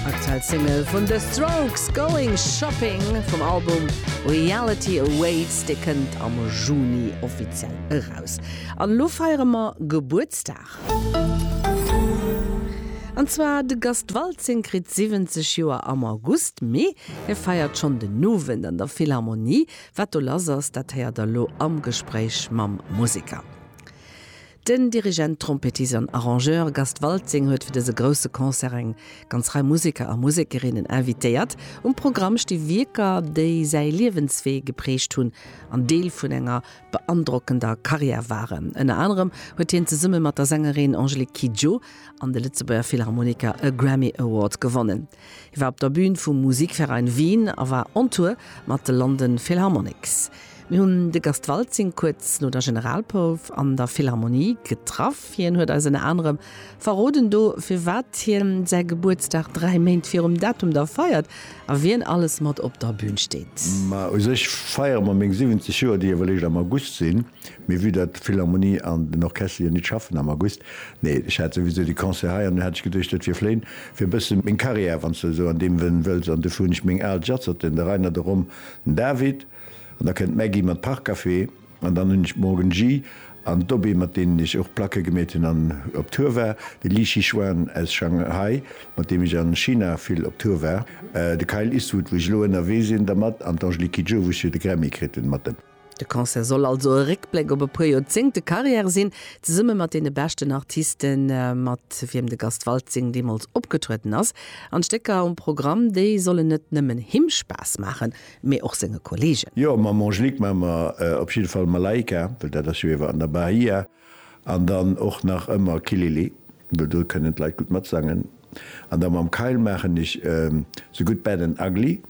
Aktuell Single vun The Strokes, Going Shopping vum Album Reality Awaits, dee kënnt am Juni offiziell eraus. An elo feiere mer Gebuertsdag. An zwar de Gast Waltzing kritt 70 Joer am August, mee hie feiert schonn den Owend an der Philharmonie. Wat do lass ass, dat héiert der elo am Gespréich mam Museker. Den Dirigent, Trompettist an Arrangeur Gast Waltzing huet fir dëse grousse Concert eng ganz Rei Museker a Musekerinnen invitéiert. Um Programm sti Wierker, déi säi Liewenswee geprägt hunn an Deel vun enger beandrockender Karriär waren. Ënner anerem huet hien zesumme mat der Sängerin Angélique Kidjo an de Lëtzebuerger Philharmoniker e Grammy Award gewonnen. Hie war op der Bühn vum Musikverein Wien a war on Tour mat de London Philharmonics. Mir hunn de Gast Waltzing kuerz no der Generalprouf an der Philharmonie getraff. Hien huet eis ënner anerem verroden do, firwat hien säi Gebuertsdag dräi Méint virum Datum da feiert a wien alles mat op der Bühn steet. Ma u sech feiere mer meng 70 Joer, déi ewell eréischt am August sinn. Mee vue dat d'Philharmonie an den Orchester jo nit schaffen am August, nee, ech hat souwisou déi Concert hei, an du hat ech geduecht, et wier vléin fir e bësse meng Carrière, wann s de esou an deem Wënn wëlls, an dofir hunn ech meng al Jazzerten, de Rainer, de Rom, den David, an da kënnt d'Maggy mat Parkcafé, an dann hunn ech d'Morgan G an d'Dobé, mat deenen ech och Placke gemeet hunn an op Tour war, de Li Shichuan aus Shanghai, mat deem ech a China vill op Tour war, de Kyle Eastwood, wou ech elo ënnerwee sinn dermat, an d'Angelique Kidjo, wou ech jo de Grammy kritt hunn mat em. De Concert soll also e Réckbléck op e puer Joerzéngte Karriär sinn, zesumme mat deene beschten Artisten, mat wiem de Gast Waltzing deemools opgetrueden ass. An d'Stécker um Programm, déi sollen net nëmmen him Spaass maachen, mee och senge Kolleegen. Jo, mam Angelique maa mer op jidde Fall Malaika, well dat ass jo iewer an der Bahia, an dann och nach ëmmer Kilili, well do kënnen d'Leit gutt matsangen. An da mam Kyle maachen ech The Good, Bad and Ugly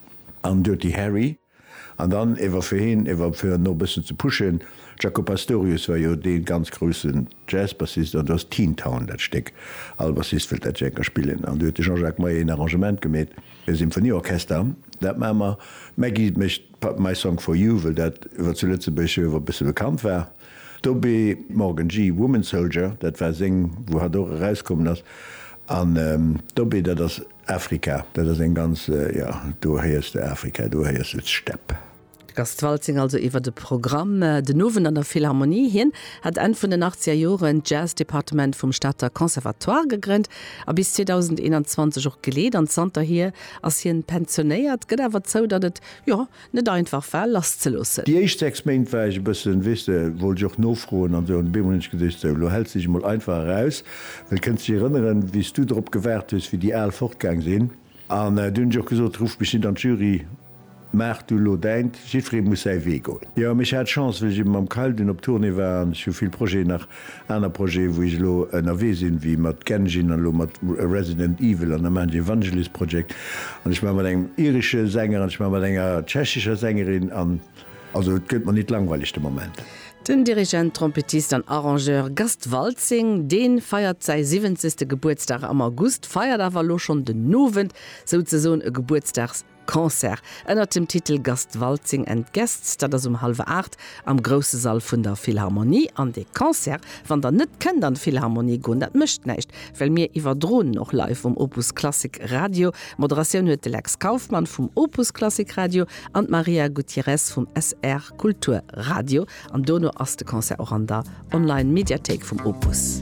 an Dirty Harry. An dann ewer fir heen ewer fir en no e bëssen ze pushen, Jaco Pastorius war jo dee ganz groussen Jazzbassist an do ass Teen Town dat Stéck, all Bassist wëllt dat Janker spillen an do huet de Jean-Jacques Meier een Arrangement gemeet, e Symphonieorchester, dat maache mer, Maggie mécht My Song for You, wëll dat ewer zu Lëtzebuerg jo ewer e bësse bekannt war, Toby Morgan Gee Woman Soldier, dat war seng wou hatt och erauskommen ass an Toby dat ass. Afrika, dat ass eng ganz, jo, do héiers de Afrika, do héiers de d'Stepp. De Gast Waltzing also iwwer de Programm den Owend an der Philharmonie. Hien hat Enn vun den achtzeger Joren d'Jazz-Departement vum Stater Conservatoire gegrënnt a bis 2021 och geleet. An zanterhier ass hien pensionéiert, gëtt awer zou, datt et, jo, Net einfach war lass ze loossen. Déi éischt 6 Méint war ech e bëssen, weess de, wollt ech och nofroen an esou an op eemol hunn ech geduecht, sou elo häls de dech emol einfach eraus, well kënns dech erënneren wéi s du drop gewaart hues wéi déi al fortgaang sinn. An du hunn ech och gesot, rufft mech net an d'Jury, maach du elo däint, jiddweree muss säi Wee goen. Jo, mee ech hat Chance, well ech eben mam Kayl dunn op Tournée war an ech hu vill Projeten nach, Aner Projeten, wou ech elo ënnerwee sinn, wéi mat Genshin an elo mat Resident Evil an da maachen ech e Vangelis Project an ech maache mat engem iresche Sänger an ech maache mat enger tschechescher Sängerin an also et gëtt mer nit langweileg de Moment. Den Dirigent, Trompettist an Arrangeur Gast Waltzing, dee feiert säi siwwenzegste Gebuertsdag am August, feiert awer elo schonn den Owend souzesoen e Gebuertsdags Concert ënnert dem Titel Gastwaltzing and Guests, dat ass um hallwer 8 am grousse Sall vun der Philharmonie. An dee Concert, wann der net kënnt an d'Philharmonie goen, dat mécht näischt, well mir iwwerdroen en och live um Opus Klassik Radio. Moderatioun huet de Lex Kauffmann vum Opus Klassik Radio an d'Maria Gutierrez vum SR Kultur Radio. An dono ass de Concert och an der Online Mediathéik vum Opus.